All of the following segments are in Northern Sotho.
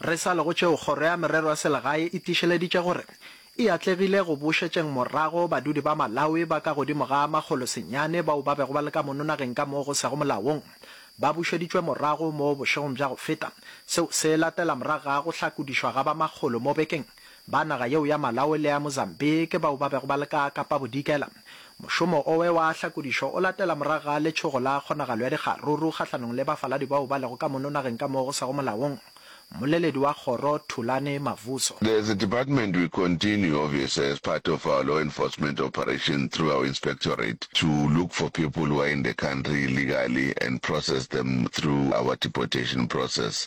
Re sa le go tšeo, Kgoro ya Merero ya Selegae e tiišeleditše gore e atlegile go bušetšeng morago badudi ba Malawi ba ka godimo ga makgolo senyane bao ba bego ba le ka mono nageng ka moo go sego molaong. Ba bušeditšwe morago moo bošegong bja go feta. Seo se latela morago ga go hlakodišwa ga ba makgolo mo bekeng. Ba naga yeo ya Malawi le ya Mozambique ke bao ba bego ba le ka Kapabodikela. Mošomo owe wa hlakodišo o latela morago ga letšhogo la kgonagalo ya dikgaruru kgahlanong le bafaladi bao ba lego ka mono nageng ka moo go sego molaong. Mmoleledi wa kgoro, Thulani Mavuso. As a department we continue obviously as part of our law enforcement operation through our inspectorate to look for people who are in the country illegally and process them through our deportation process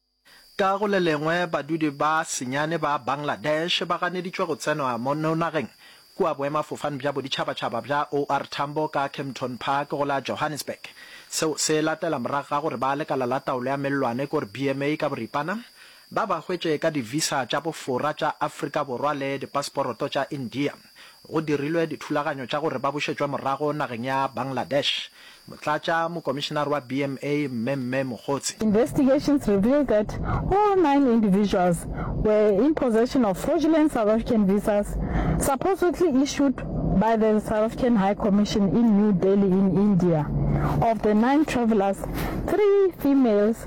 Ka go le lengwe, badudi ba senyane ba Bangladesh ba ganeditšwe go tsenwa mo nageng kua boemafofane bja boditšhabatšhaba bja OR Tambo ka Kempton Park go la Johannesburg. Seo se latela morago ga gore ba lekala la taolo ya mellwane kor BMA ka boripana ba ba hwetše ka di-visa tša bofora tša Afrika Borwa le dipaseporoto tša India. Go dirilwe dithulaganyo tša gore ba bušetšwe morago nageng ya Bangladesh. Motlatša mokomišenare wa BMA, Mme Mme Mogotsi. Investigations revealed that all nine individuals were in possession of fraudulent South African visas supposedly issued by the South African High Commission in New Delhi in India. Of the nine travellers, three females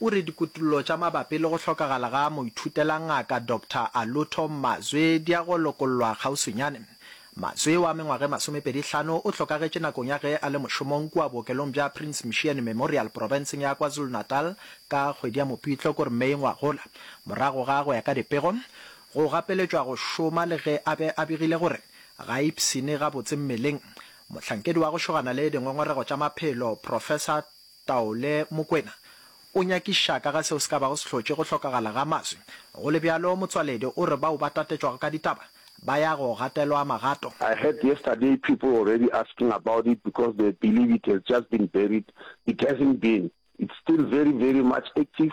O re dikutollo tša mabapi le go hlokagala ga moithutelangaka Doctor Alutho Mazwe di ya go lokollwa kgauswinyane. Mazwe wa mengwaga e masomepedi hlano o hlokagetše nakong ya ge a le mošomong kua bookelong bja Prince Mshiane Memorial profenseng ya KwaZulu-Natal ka kgwedi ya Mopitlo kor May ngwagola morago ga, go ya ka dipego, go gapeletšwa go šoma le ge a be a begile gore ga a ipshine gabotse mmeleng. Mohlankedi wa go šogana le dingongorego tša maphelo Professor. Taole, Mokwena o nyakiša ka ga seo se ka bago se hlotše go hlokagala ga maswi. Go le bjalo, Motsoaledi o re bao ba tatetšwago ka ditaba ba ya go gatelwa magato. I heard yesterday people already asking about it because they believe it has just been buried, it hasn't been, it's still very very much active,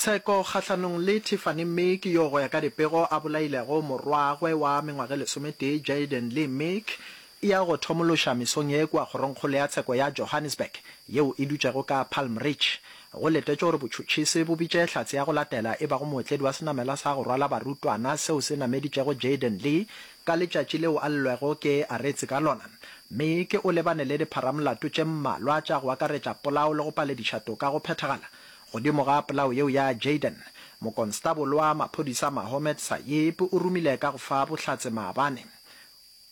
Tsheko kgahlanong le Tiffany mme ke yo go ya ka dipego a bolailego morwagwe wa mengwage lesometee Jayden Lee Meek e ya go thomološa mesong ye kua kgorongkgolo ya tsheko ya Johannesburg yeo e dutšego ka Palm Ridge. Go letetšwe gore botšhotšhisi bo bitše hlatse ya go latela e bago mootledi wa senamela sa go rwala barutwana seo se nameditšego Jayden Lee ka letšatši leo a llelwego ke aretse ka lona. Meek o lebane le dipharamolato tše mmalwa tša go akaretša polao le go palediša toka go phethagala. Godimo ga polao yeo ya Jayden, Mokonstabolo wa Maphodisa Mahomed Sayeep o romile ka go fa bohlatse maabane.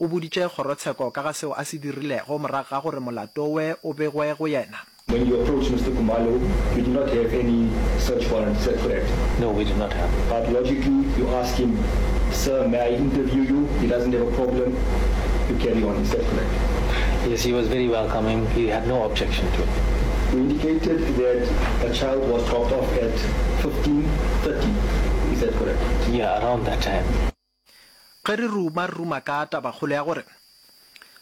O boditše kgorotsheko ka ga seo a se dirilego morago ga gore molato we o begwe go yena. When you approach Mister Khumalo, we do not have any search warrant set for that. No, we do not have. But logically, you ask him, Sir, may I interview you? He doesn't have a problem. You carry on. Is that correct? Yes, he was very welcoming. He. No objection to. We indicated that a child was dropped off at 15:30, is that correct? Yeah, around that time. Ge re ruma, re ruma ka tabakgolo ya gore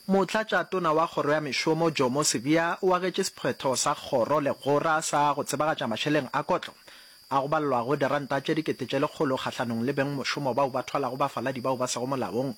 Motlatšatona wa Kgoro ya Mešomo Jomo Sibiya o agetše sephetho sa kgoro legora sa go tsebagatša mašeleng a kotlo a go balelwago diranta tše dikete tše lekgolo kgahlanong le bengmošomo bao ba thwalago bafaladi bao ba sego molaong.